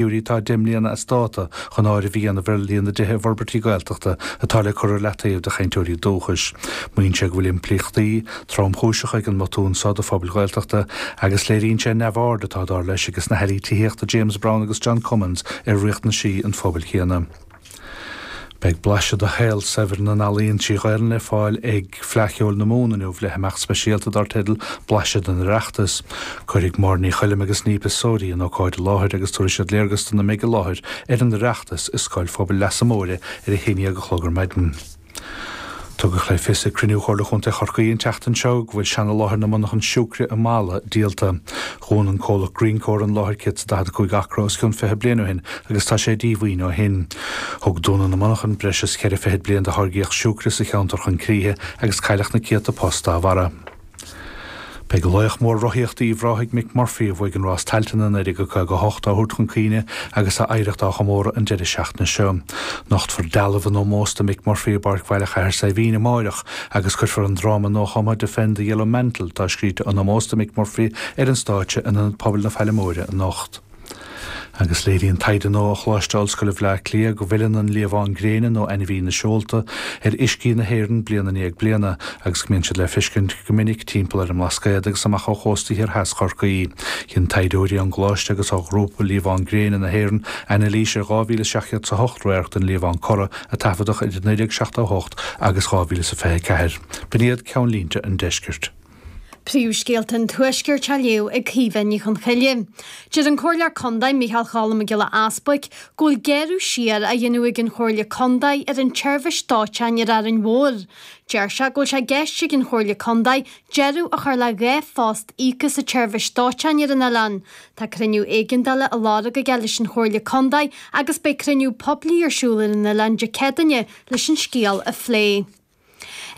figiúirí atá 10 mbliana as dáta, chun áireamh a dhéanamh ar líon na dtithe i bhforbairtí Gaeltachta atá le cur ar leataobh do chainteoirí dúchais. Maíonn sé go bhfuil impleachtaí tromchúiseacha ag an mbotún so do phobail Ghaeltachta agus léiríonn sé an neamhaird atá, dar leis, aiges na hAirí tithíochta James Browne agus John Cummins ar riachtanaisí an phobail chéanna. Beidh blaiseadh de shaol saibhir na n-ealaíon trí Ghaelainn le fáil ag Fleadh Cheoil na Mumhan inniu le himeacht speisialta dar teideal 'Blaiseadh den Oireachtas'. Cuirfidh Máire Ní Choilm agus Niamh de Sorie an ócáid i láthair agus tabharfaidh siad léargas dona mbeidh i láthair ar an Oireachtas i Scoil Phobail Leasa Móire ar a haon déag a chlog ar maidin. Tugadh le fios ag cruinniú Chomhairle Chontae Chorcaí an tseachtain seo go bhfuil seana-láthair na monarchan siúcre i Mala díolta. Dhún an comhlacht Greencore an láthair 145 acra os cionn 20 bliain ó shin agus tá sé díomhaoin ó shin. Thug dúnadh na monarchan breis is cheithre fichid bliain de tháirgíocht siúcre sa cheantar chun críche agus cailleadh na céadta post dá bharra. Beidh laoch mór rothaíochta Uíbh Ráthaigh Mick Murphy, a bhuaigh an Rás Tailteann i 1958, á thabhairt chun cuimhne agus a oidhreacht á chomóradh an deireadh seachtaine seo. Nochtfar dealbh in ómós do Mick Murphy i bPáirc Bhaile Chathair Saidhbhín amárach agus cuirfear an dráma nuachumtha Defend the Yellow Mantle atá scríte in ómós do Mick Murphy ar an stáitse in Ionad Pobail na Faille Móire anocht. Agus léiríonn taighde nua ó Choláiste Ollscoile Bhleá Cliath go bhfilleann an liamhán gréine nó ainmhí na seolta ar uiscí na hÉireann bliain i ndiaidh bliana agus go mbíonn siad le feiscint go minic timpeall ar an mBlascaod agus amach ó chósta thiar theas Chorcaí. Dhein taighdeoirí ón gColáiste agus ó Ghrúpa Liamhán Gréine na hÉireann anailís ar 2,708 radharc den liamhán corra a taifeadadh idir 1978 agus 2024. B'in iad ceannlínte an deiscirt. Príomhscéalta an Tuaiscirt á léamh ag Caoimhe Ní Chonchoille. Deir an Comhairleoir Contae Micheál Choilm Mac Giolla Easbuic go bhfuil gearradh siar á dhéanamh ag an Chomhairle Contae ar an tseirbhís dóiteáin ar Árainn Mhór. Deir sé go bhfuil sé i gceist ag an Chomhairle Contae deireadh a chur le dhá phost íoctha sa tseirbhís dóiteáin ar an oileán. Tá cruinniú éigeandála á lorg aige leis an Chomhairle Contae agus beidh cruinniú poiblí ar siúl ar an oileán Dé Céadaoine leis an scéal a phlé.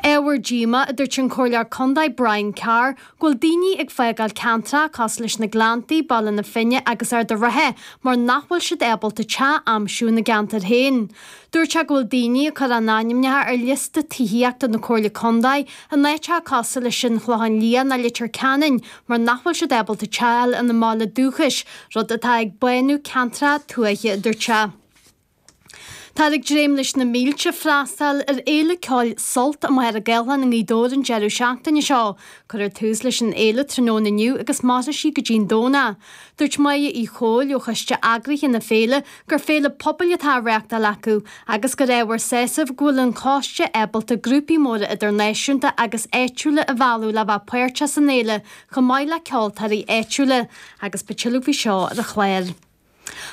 Ábhar díomá, a dúirt an Comhairleoir Contae Brian Carr, go bhfuil daoine ag fágáil ceantracha cosúil leis na Gleanntaí, Baile na Finne agus Ard an Rátha mar nach bhfuil siad ábalta teach a aimsiú ina gceantair féin. Dúirt sé go bhfuil daoine ag cur a n-ainmneacha ar liosta tithíochta na Comhairle Contae in áiteacha cosúil leis an Chlochán Liath ná Leitir Ceanainn mar nach bhfuil siad ábalta teach a fháil ina mbaile dúchais, rud atá ag bánú ceantracha tuaithe, a dúirt sé. Táthar ag dréim leis na mílte freastal ar fhéile ceoil Sult i Machaire Gathlán i nGaoth Dobhair an deireadh seachtaine seo. Cuirfear tús leis an fhéile tráthnóna inniu agus mairfidh sí go dtí an Domhnach. Dúirt Máire Uí Chomhaill ó choiste eagraithe na féile gur féile pobail atá á reachtáil acu agus gur ábhar sásaimh go bhfuil an coiste ábalta grúpaí móra idirnáisiúnta agus áitiúla a mhealladh le bheith páirteach san fhéile chomh maith le ceoltóirí áitiúla agus beidh tuilleadh faoi seo ar an chlár.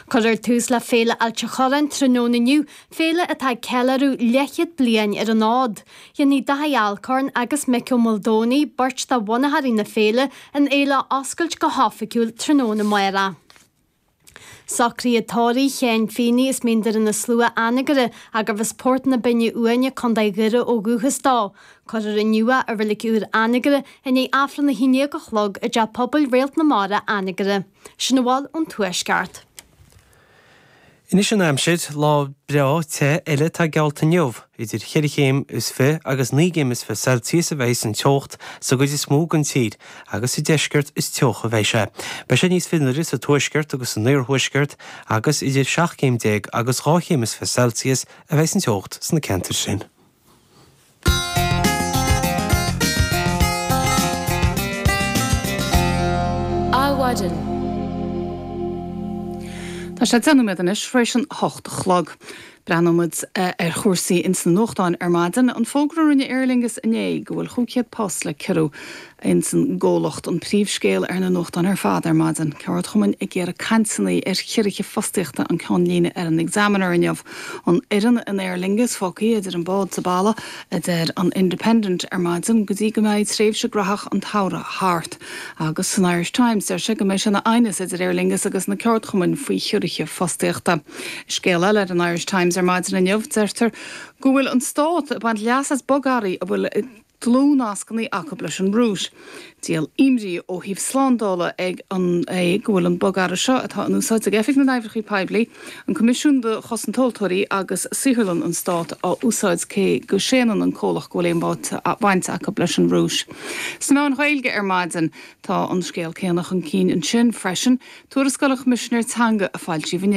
Cuireadh tús le Féile Ailt an Chorráin tráthnóna inniu, féile atá ag ceiliúradh leathchéad bliain ar an fhód. Dhéanfaidh Dáithí Alcorn agus Mick Ó Maoldomhnaigh, beirt de bhunaitheoirí na féile, an fhéile a oscailt go hoifigiúil tráthnóna. amárach. Socraithe tórraimh Shéin Feeney as Mín Doire na Slua, Anagaire agus arbh as Port na Binne Uaine, Co. Dhoire ó dhúchas dó. Cuirfear inniu é i Reilig Úr Anagaire i ndiaidh Aifreann a hAon Déag a chlog i dTeach Pobail Réalt na Mara, Anagaire. Sin a bhfuil ón Tuaisceart. Anois an aimsir, lá breá te eile atá geallta inniu. Idir cheithre chéim is fiche agus naoi gcéim is fiche Celsius a bheidh an teocht sa gcuid is mó den tír agus sa deisceart is teocha a bheidh sé. Beidh sé níos fionnuaire sa tuaisceart agus san iarthuaisceart agus idir seacht gcéim déag agus dhá chéim is fiche Celsius a bheidh an teocht sna ceantair sin. Adhmhaidin. Tá sé deich nóiméad anois tar éis a hocht a chlog. Breathnóidh muid ar chúrsaí ins na nuachtáin ar maidin, an fógra a rinne Aer Lingus inné go bhfuil chúig chéad post le ciorrú, Ins an gcomhlacht, an príomhscéal ar na nuachtáin ar fad ar maidin. Ceardchumainn ag iarraidh cainteanna ar chiorruithe fostaíochta an ceann líne ar an Examiner inniu. An fhoireann in Aer Lingus fágtha idir an bád 's a balla, a deir an Independent ar maidin, go dtí go mbeidh tréimhse gnaitheach an tsamhraidh thart. Agus san Irish Times deir sé go mbeidh sé ina aighneas idir Aer Lingus agus na ceardchumainn faoi chiorruithe fostaíochta. I scéal eile ar an Irish Times ar maidin inniu deirtear go bhfuil an Stát ag baint leas as bogearraí a bhfuil dlúthnascanna acu leis an Rúis. Díol imní ó thaobh slándála dhe é go bhfuil an bogearra seo, atá in úsáid ag Oifig na nOibreacha Poiblí, an Coimisiún do Chosaint Tomhaltóirí agus Saotharlann an Stáit, á úsáid cé go séanann an comhlacht go bhfuil aon bhaint acu leis an Rúis. Sna meáin Ghaeilge ar maidin tá an scéal céanna chun cinn ansin freisin. Tuarascáil an Choimisinéara Teanga a foilsíodh inné.